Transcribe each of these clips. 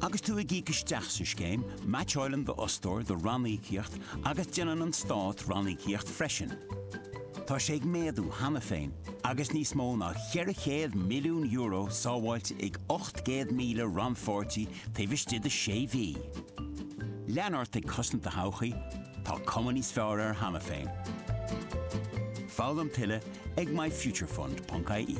Agus tú ag íoc isteach sa scéim, meaitseálann d'fhostóir do ranníocaíocht agus déanann an Stát ranníocaíocht freisin. Tá sé ag méadú cheana féin agus níos mó ná €400 milliún sábháilte ag 800,000 rannpháirtí taobh istigh de sé mhí. Lean ort ag cosaint do thodhchaí, tá cuma níos fearr air cheana féin. Foghlaim tuilleadh ag myfuturefund.ie.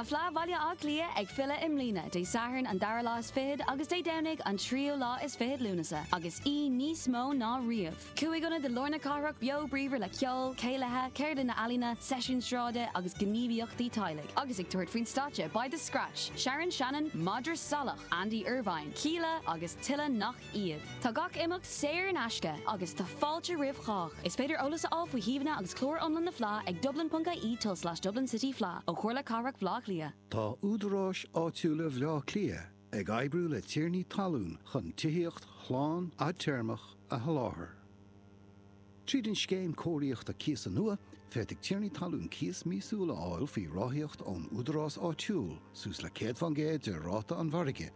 Tá Fleadh Bhaile Átha Cliath ag filleadh i mbliana, Dé Sathairn an dara lá is fichead agus Dé Domhnaigh an tríú lá is fichead Lúnasa, agus í níos mó ná riamh. Cúig ionad i lár na cathrach beo bríomhar le ceol, céilithe, ceardlanna ealaíona, seisiúin sráide agus gníomhaíochtaí teaghlaigh. Agus ag tabhairt faoin stáitse beidh The Scratch, Sharon Shannon, Madra Salach, Andy Irvine, Kíla agus tuilleadh nach iad. Tá gach imeacht saor in aisce agus tá fáilte roimh chách. Is féidir eolas a fháil faoi shuíomhanna agus clár iomlán na Fleá ag dublin.ie tulslais dublincityfleadh ó Chomhairle Cathrach Bhleá Cliath. Tá Údaráis Áitiúla Bhleá Cliath ag oibriú le tiarnaí talún chun tithíocht shlán fhadtéarmach a sholáthar. Tríd an Scéim Cóiríochta Cíosa nua, féadfaidh tiarnaí talún cíos míosúil a fháil faoi ráthaíocht ón údarás áitiúil, suas le 100% de ráta an mhargaidh,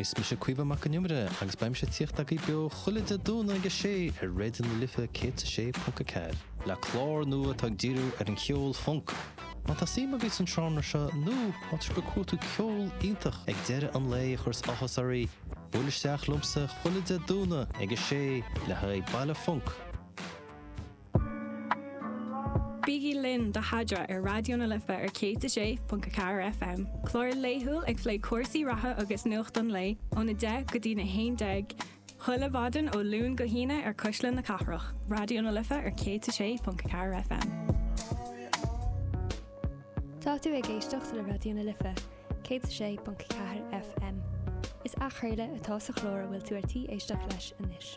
Is mise Caoimhe Mac an Iomaire agus beimse ag tíocht agaibh beo chuile Dé Domhnaigh ag a sé ar Raidió na Life 106.4, le clár nua atá ag díriú ar an cheol funk. Má tá suim agaibh san seánra seo nó má tá sibh ag cuartú ceol iontach ag deireadh an lae a chuireas áthas oraibh, buail isteach liomsa chuile Dé Domhnaigh ag a sé le haghaidh Baile Funk! Bígí linn do Thadra ar Raidió na Life ar 106.4 FM, clár laethúil ag plé cúrsaí reatha agus nuacht an lae ón 10 go dtí'n 11 chuile mhaidin ó Luan go hAoine ar Cuisle na Cathrach, Raidió na Life ar 106.4 FM. Tá tú ag éisteacht le Raidió na Life, 106.4 FM. Is athchraoladh atá sa chlár a bhfuil tú ar tí éisteacht leis anois.